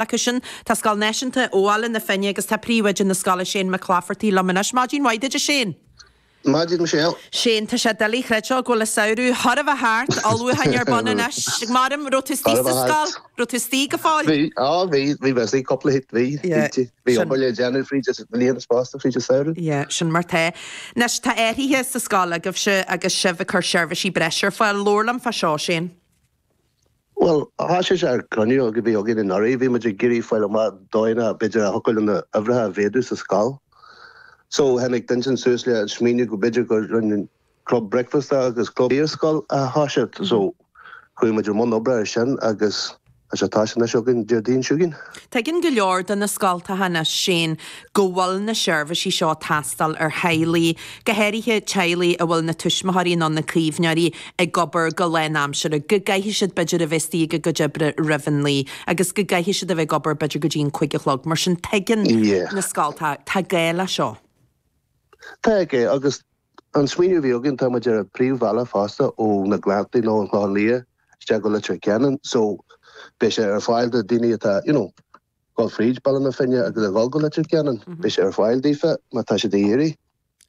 acu sin. Tá Scoil Náisiúnta Bhaile na Finne agus tá príomhoide na scoile, Shane Mac Laifeartaigh, liom anois. Maidin mhaith duit, a Shane! Maidin, Michelle! Shane, tá sé doiligh a chreidbheáil go bhfuil an samhradh chóir a bheith thart, ullmhúcháin ar bun anois. Mairim, raibh tú istigh sa scoil? Raibh tú istigh go fóill? Bhí, á bhí, bhí mé istigh cúpla, bhí, bhí, bhítí. Bhí obair le déanamh fríd an mbliain fosta, fríd an samhradh. Yeah, sin mar tá. Anois, tá athraithe sa scoil agaibhse agus sibh ag cur seirbhísí breise ar fáil. Labhair liom fá seo, Shane. Bhuel, thoisigh sé ar chruinniú a bhí againn anuraidh. Bhí muid ag iarraidh fáil amach dóigheanna b'fhéidir a thiocfadh linn na huimhreacha a mhéadú sa scoil. So, tháinig duine inteacht suas le an smaoineamh go b'fhéidir go roinn club bricfeasta agus club iarscoil a thoiseacht. So, chuaigh muid i mbun oibre ar sin agus beidh sé ag toiseacht anois againn Déardaoin seo chugainn. Tuigeann go leor de na scoltacha anois, Shane, go bhfuil na seirbhísí seo ag teastáil ar theaghlaigh, go háirithe teaghlaigh a bhfuil na tuismitheoirí nó na caomhnóirí ag obair go lánaimseartha, go gcaithfidh siad b'fhéidir a bheith istigh ag a gcuid oibre roimh an naoi agus go gcaithfidh siad a bheith ag obair b'fhéidir go dtí an cúig a chlog. Mar sin tuigeann na scoltacha, tá gá leis seo. Tá gá agus an smaoineamh a bhí againn, tá muid ar an príomhbhealach fosta ó na Gleanntaí nó an Clochán Liath isteach go Leitir Ceanainn so beidh sé ar fáil do daoine atá, you know, dhul fríd Baile na Finne agus a dhul go Leitir Ceanainn. Beidh sé ar fáil daofa má tá siad ag iarraidh.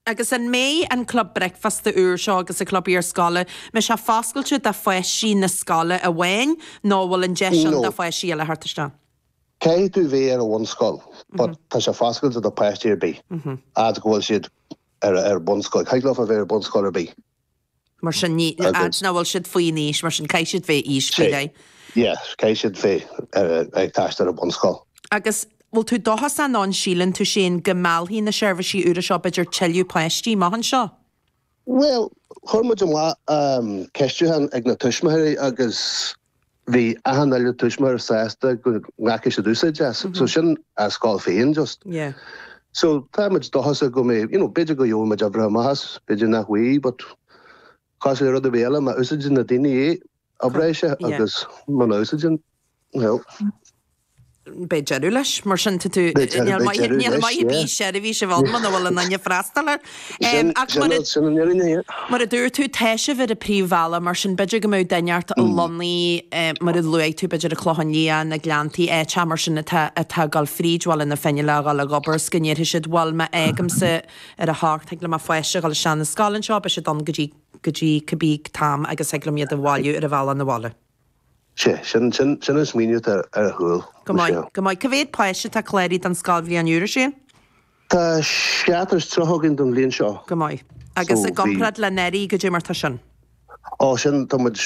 Agus an mbeidh an club bricfeasta úr seo agus an club iarscoile, an mbeidh sé foscailte do pháistí na scoile amháin nó an bhfuil an deis ann do pháistí eile theacht isteach? Caithfidh tú bheith ar an bhunscoil but tá sé foscailte do páistí ar bith fhad go bhfuil siad ar bunscoil. Thig leofa bheith ar bunscoil ar bith. Mar sin, ní, a fhad nach bhfuil siad faoin aois, mar sin, caithfidh siad bheith aois faoi leith. Yeah, caithfidh siad bheith ag freastal ar bunscoil. Agus, bhfuil tú dóchasach nó an síleann tú, Shane, go meallfaidh na seirbhísí úra seo b'fhéidir tuilleadh páistí amach anseo? Bhuel, chuir muid amach ceistiúchán ag na tuismitheoirí agus bhí achan uile tuismitheoir sásta go nglacfaidh siad úsáid as, so sin an scoil féin just. Yeah. So tá muid dóchasach go mbeidh, you know, b'fhéidir go gheobhaimid uimhreacha maith as, b'fhéidir nach bhfaighidh but cosúil le rud ar bith eile má úsáideann na daoine é, oibreoidh sé agus muna úsáideann, well. Beidh deireadh leis, mar sin. Níl maith ar bith seirbhís i bhfad muna bhfuil daoine ag freastal air. Mar a dúirt tú, tá sibh ar an príomhbhealach, mar sin b'fhéidir go mbeadh duine inteacht lonnaithe, mar a luaigh tú, b'fhéidir i Clochán Liath, na Gleanntaí, áit mar sin atá ag dul fríd Bhaile na Finne le dhul ag obair is go ndéarfaidh siad, bhuel, má fhágaimse ar a hocht, thig le mo pháiste a dhul isteach ar an scoil anseo, beidh siad ann go dtí go dtí cibé am agus thig liom iad a bhailiú ar an bhealach 'na bhaile. Sé, sin, sin, sin an smaoineamh atá ar a chúl, Michelle. Go maith, go maith. Cá mhéad páiste atá cláraithe don scoilbhliain úr, a Séan? Tá seachtar is tríocha againn don bhliain seo. Go maith. So, bhí. Agus i gcomparáid le anuraidh, goidé mar tá sin? Ó, sin, tá muid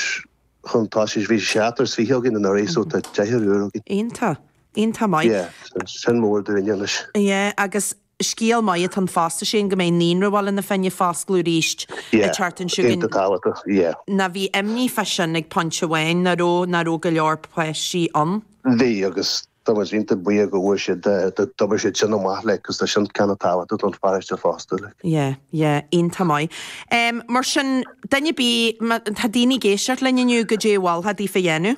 chun tosaigh, bhí seachtar is fiche againn anuraidh so tá deichniúr againn. Iontach, iontach maith. Yeah, sin mór dúinne anois. Yeah, agus Scéal maith atá ann fosta, Séan, go mbeidh Naíonra Bhaile na Finne ag foscladh arís an tseachtain seo. Ná bhí imní fá sin ag pointe amháin, nach raibh? Nach raibh go leor páistí ann? Bhí, agus tá muid iontach buíoch go bhfuair siad, d'obair siad sin go maith, like, 'cause tá sin kinda tábhachtach don pharáiste fosta, like. Yeah, yeah, iontach maith. Mar sin, duine ar bith, má tá daoine ag éisteacht linn inniu, goidé a mholfá daofa a dhéanamh?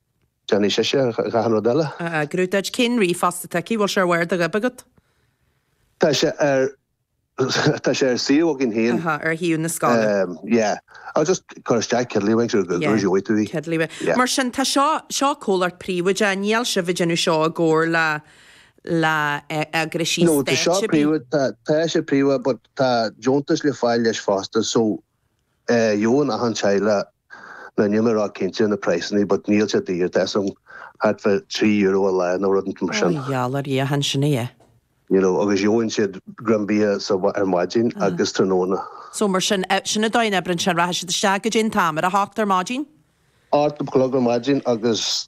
Déanfaidh sise achan rud eile a eagrú duit. Cén ríomhphost atá aici? Bhfuil sé ar bharr do ghoib agat? Tá sé ar, tá sé ar suíomh againn féin. Aha, ar shuíomh na scoile. Yeah. Agus just cuir isteach Kiddlywinks agus gheobhaidh tú í. Yeah, Kiddlywinks. Yeah. Mar sin, tá seo, seo comhlacht príobháideach, níl sibh ag déanamh seo i gcomhar le, le eagraisí stáit. No, tá seo príobháideach, tá sé príobháideach but tá deontas le fáil leis fosta so. Gheobhann achan teaghlach na, níl mé róchinnte na praghsanna but níl siad daor, tá sé thart fá trí euro a lá nó rud mar sin. Mar gheall ar Dhia an sin é? You know agus gheobhann siad greim bia sa ar maidin agus tráthnóna. So mar sin, sin an dóigh a n-oibreann sé, rachaidh siad isteach goidé an t-am, ar a hocht ar maidin? Ocht a chlog ar maidin agus